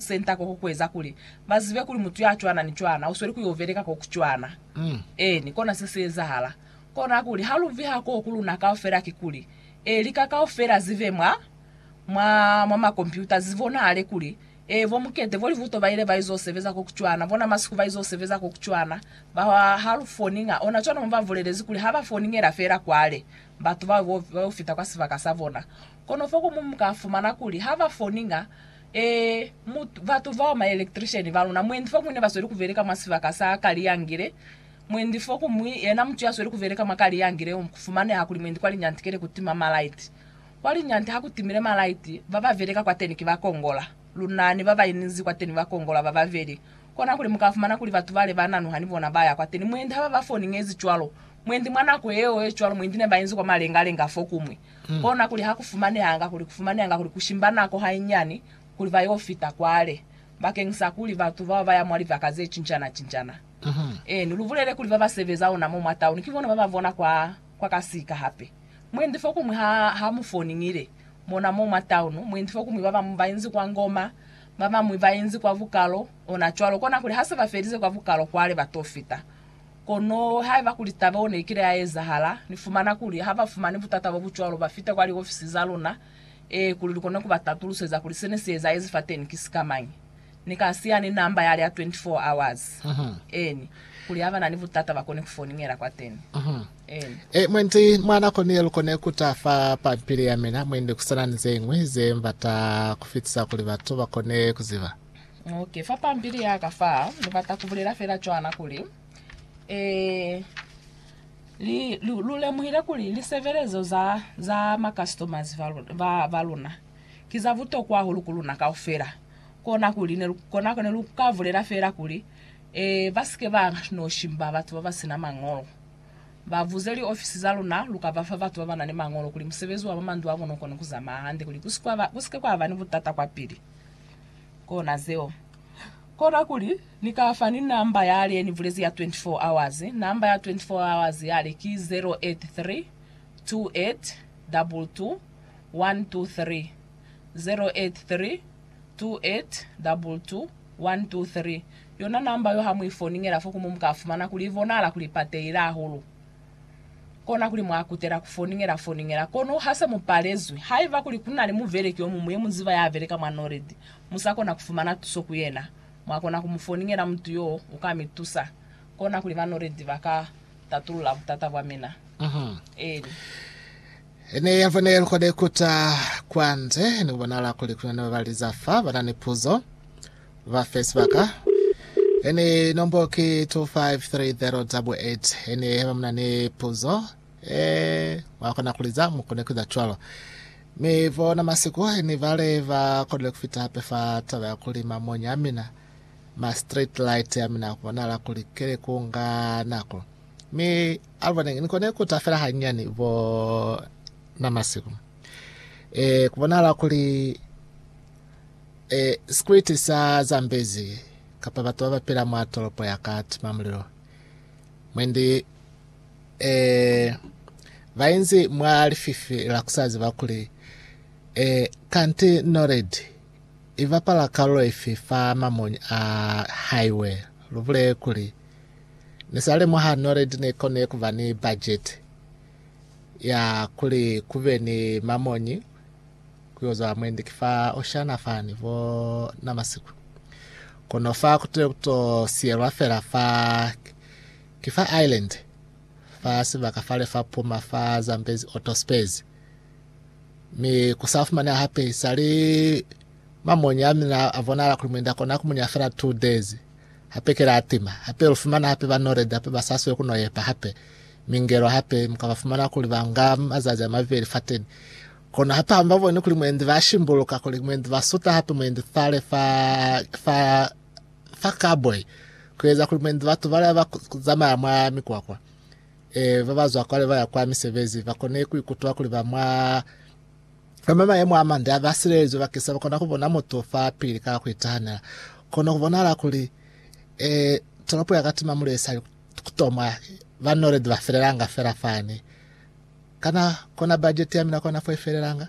Senta koko kueza kuli bazibe kuli mutu yacwana ni cwana usweli kuyo beleka koku cwana. Eeni, kona seseezahala. Kona kuli haluviha koo ku luna kaufela kikuli, e, lika kaufela zibe mwa, mwa, mwa makompyuta, zibonahale kuli, e, bo Mukete bo libuto baile baizo sebeza koku cwana, bona masiku baizo sebeza koku cwana, ba halu foninga, ona cwana mo babulelezi kuli haba foningela feela kwale, batu bao bo, bayo fita kwa sibaka sabona. Kono fo komuñwi muka fumana kuli haba foninga, Ee, mu, batu bao, maelectrician baluna, mwendi fokuñwi nebasweli kubeleka mwa sibaka sa Kaliangile, mwendi fokuñwi, yena mutu yasweli kubeleka mwa Kaliangile, kufumaneha kuli mwendi kwa linyanti keli kutima malaiti. Kwa linyanti hakutimile malaiti, bababeleka kwateni ki bakongola. Luna ni babainizi kwateni bakongola bababeli. Kona kuli mukafumana kuli batu bale bananuha ni bona baya kwateni, mwendi hababafoni ngezi cwalo, mwendi mwa nako yeo yecwalo, mwendi nebainzi kwa malenga-lenga fokuñwi, Kona kuli ha ku fumanehanga kuli ku fumanehanga kuli ku shimba nako hainyiani kuli ba y'o fita kwale bakeñisa kuli batu bao ba ya mwa libaka ze cincana-cincana. Eeni, lu bulele kuli ba ba sebeza ona mo mwa tauni ki bona ba ba bona kwa, kwa kasika hape. Mwendi fokuñwi ha, ha mu foningile, mona mo mwa taunu, mwendi fokuñwi ba bañwi ba inzi kwa Ngoma, ba bañwi ba inzi kwa bukalo, ona cwalo. Kona kuli ha se ba felize kwa bukalo kwale ba t'o fita. Kono haiba kuli taba yeo neikile ya ezahala, Ni fumana kuli ha ba fumani butata bo bucwalo ba fita kwa liofisi za luna, ee, kuli lu kone ku ba tatuluseza kuli sene si ezaezi fateni ki sikamañi. Ni ka siya ni namba yale ya 24 hours, eeni, kuli ha ba na ni butata ba kone ku foningela kwateni. Eeni. Ee, mwendi, mwa nako ni ye lu kone ku ta fa pampili ya mina, mwendi, ku sa na ni ze ñwi ze m'bata ku fitisa kuli batu ba kone ku ziba. Okay, fa pampili yaka fa ni bata kubulela fela cwana kuli eh, li, lu, lu lemuhile kuli lisebelezo za, za ma customers va, lu- ba, ba luna ki za butokwa hahulu ku luna kaufela. Kona kuli ne, lu- kona kuli ne lu ka bulela fela kuli eh, ba sike ba no shimba batu ba ba sina mañolo. Ba buze li ofisi za luna, lu ka bafa batu ba ba na ni mañolo kuli musebezi wa mwa mandu a bona u kone ku zamaya hande kuli ku si kwa ba, ku sike kwa ba ni butata kwa pili. Kona zeo. Kona kuli, Ni ka fa ni namba yale yeni bulezi ya 24 hours. Namba ya 24 hours yale ki 0832822123. 0832822123. Yona namba yo ha mu i foningela fo ku mu, mu ka fumana kuli i bonahala kuli ipatehile hahulu. Kona kuli mwa kutela ku foningela foningela, kono ha se mu palezwi. Haiba kuli ku na ni mubeleki yo muñwi ye mu ziba ya beleka mwa Norid, mu sa kona ku fumana tuso ku yena, mwa kona ku mu foningela. Mutu yo u ka mi tusa. Kona kuli ba Norid ba ka tatulula butata bwa mina. Eli. E ne ya fone likona ikuta kwa nde ni ku bonala kuli ku na ni babaliza fa ba na ni puzo. Ba fe sibaka. Ene nombo ki 253088. Ene heba muna ni puzo, e mwa kona kuli za mu kone kueza cwalo. Mi bona masiku ni bale ba konile kufita hape fa taba ya kuli mamonya a mina, ma street light a mina kubonahala kuli kile ku nga nako. Mi alubonenge ni kone kuta fela hanyani bo na masiku. E kubonahala kuli E, sikriti sa Zambezi, kapa batu babapila mwa tolopo ya ka tima mulilo. Mwendi, e, bainzi mwa lififi la kusaziba kuli, e, kanti noledi ibapala kalulo ifi fa mamonyi a haiwe, lubule kuli, Nisalemuha noledi neikone kuba ni bajeti ya kuli kube ni mamonyi, kuyoza mwendi ki fa Oshana fani vo na masiku. Kono fa kutile kuto siyelwa fela fa ki fa Ireland fa sibaka fale fa puma fa Zambezi Otto Spares. Mi kusa fumaneha hape isali mamonya mina a bonala kuli mwenda kona kumunya fela 2 days hape kela atima hape lufumana hape ba nored hape ba saswe kuno yepa hape mingelo hape mukaba fumana kuli banga mazazi a mabeli fateni Kono hape hamba boni kuli mwendi ba shimbuluka kuli mwendi ba suta hape mwendi thale fa fa fa cowboy kueza kuli mwendi batu bala ba zamaya mwa mikwakwa e ba bazwa kwale baya kwa misebezi ba kone ku ikutua kuli ba mwa ama mayemo a mande ba silelezwe ba kisa ba kona ku bona mutu fa pili ka ku itahanela kono ku bona la kuli e toropo ya katima mulesa kutomwa ba noledi ba felelanga fela fani Kana kona bajeti ya mina kona fo ifelelanga?